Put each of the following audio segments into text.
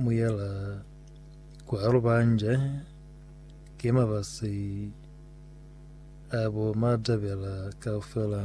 mu yela kwa Lubanje ki mabasi a bo Matabela kaufela.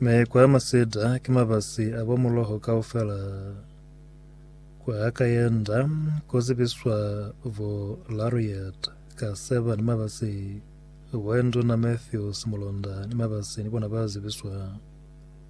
Me kwa Maseda ki mabasi a bo Muloho kaufela. Kwa Kayenda ku zibiswa bo Lariat Kaseba ni mabasi bo Nduna Matthews Mulonda ni mabasi ni bona ba zibiswa.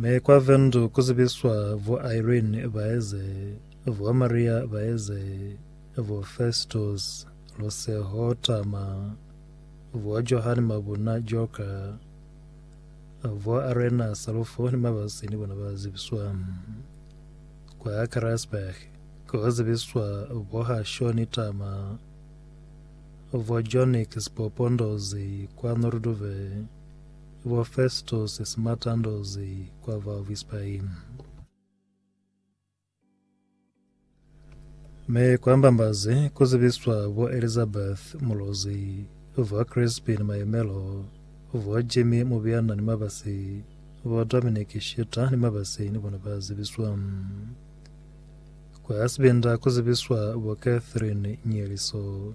Mi kwa Vendu ku zibiswa bo Irene Baeze, bo Maria Baeze, bo Festus Luseho Tama, bo Johane Mabuna Joka, bo Arena Salufo ni Mabasi ni bona ba zibiswa. Kwa Karasburg ku zibiswa bo Hashoni Tama, bo Jonix Popondozi kwa Noorduve, Bo Festus Simatandozi kwa Valvis Pain. Mi kwa Mbambazi ku zibiswa bo Elizabeth Mulozi, bo Crispin Mayemelo, bo Jimmy Mubiana ni Mabasi, bo Dominic Shita ni Mabasi ni bona ba zibiswa. Kwa Sibinda ku zibiswa bo Catherine Nyeliso.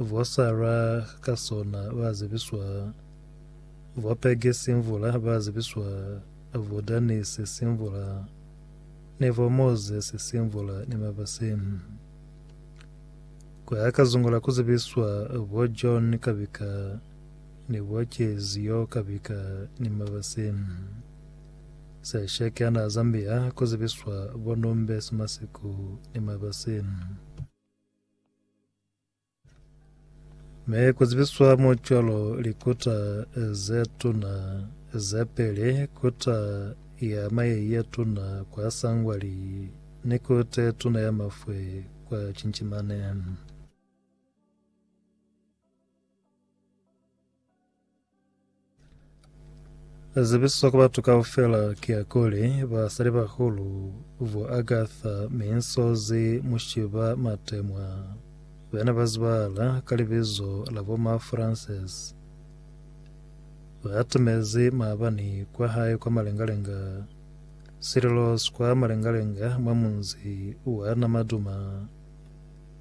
Vwa Sara ka sona ba zibiswa, vwa Pege simvula ba zibiswa, vwa Danise simvula, ni vwa Mozesi simvula ni mabasi. Ku ya ka zungu la ku zibiswa, vwa John Kabika ni vwa Kezio Kabika ni mabasi. Sesheke ana Zambia ku zibiswa vwa Numbesi Masiku ni mabasi. Mi kuzibiswa mo cwalo likuta ze tuna ze peli, kuta ya maye ye tuna kwa Sangwali ni kuta ye tuna ya mafwe kwa Chinchimane. Zibiso ku batu kaufela ki ya kuli basalibahulu bo Agatha Minsozi Mushiba Matemwa bana ba zibahala ka libizo la bo Ma Francis ba timezi maabani kwa hae kwa Malengalenga Sililos kwa Malengalenga mwa munzi wa Namaduma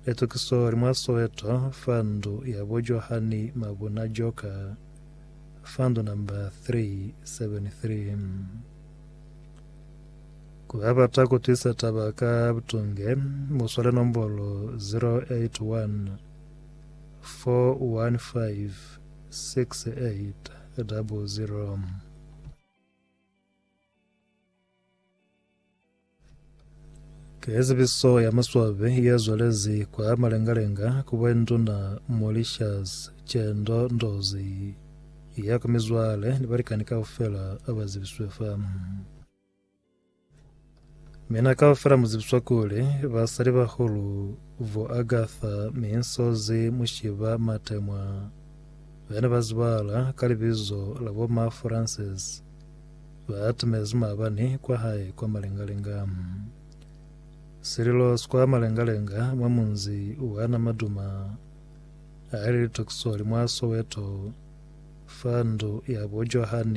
Litukiso li mwa Soweto fa ndu ya bo Johani Mabuna Joker fa ndu number 373. Ku ba bata ku twisa taba ka butunge, mu swale nombolo 081 415 6800. Ke zibiso ya maswabi ya zwalezi kwa malengalenga ku bwenduna Mauritius Chendo Ndozi ya ku mizwale ni balikani kaufela aba zibiswe fa. Mina kaufela muzibiswa kuli basali bahulu vo Agatha Minsozi Mushiba Matemwa bene bazibala ka libizo la bo Ma Francis Ba atimezi maabani kwa hae kwa malengalenga. Sililo skwa malengalenga mwa munzi wa na maduma a li litokiso li mwa Soweto, fa ndu ya bo Johan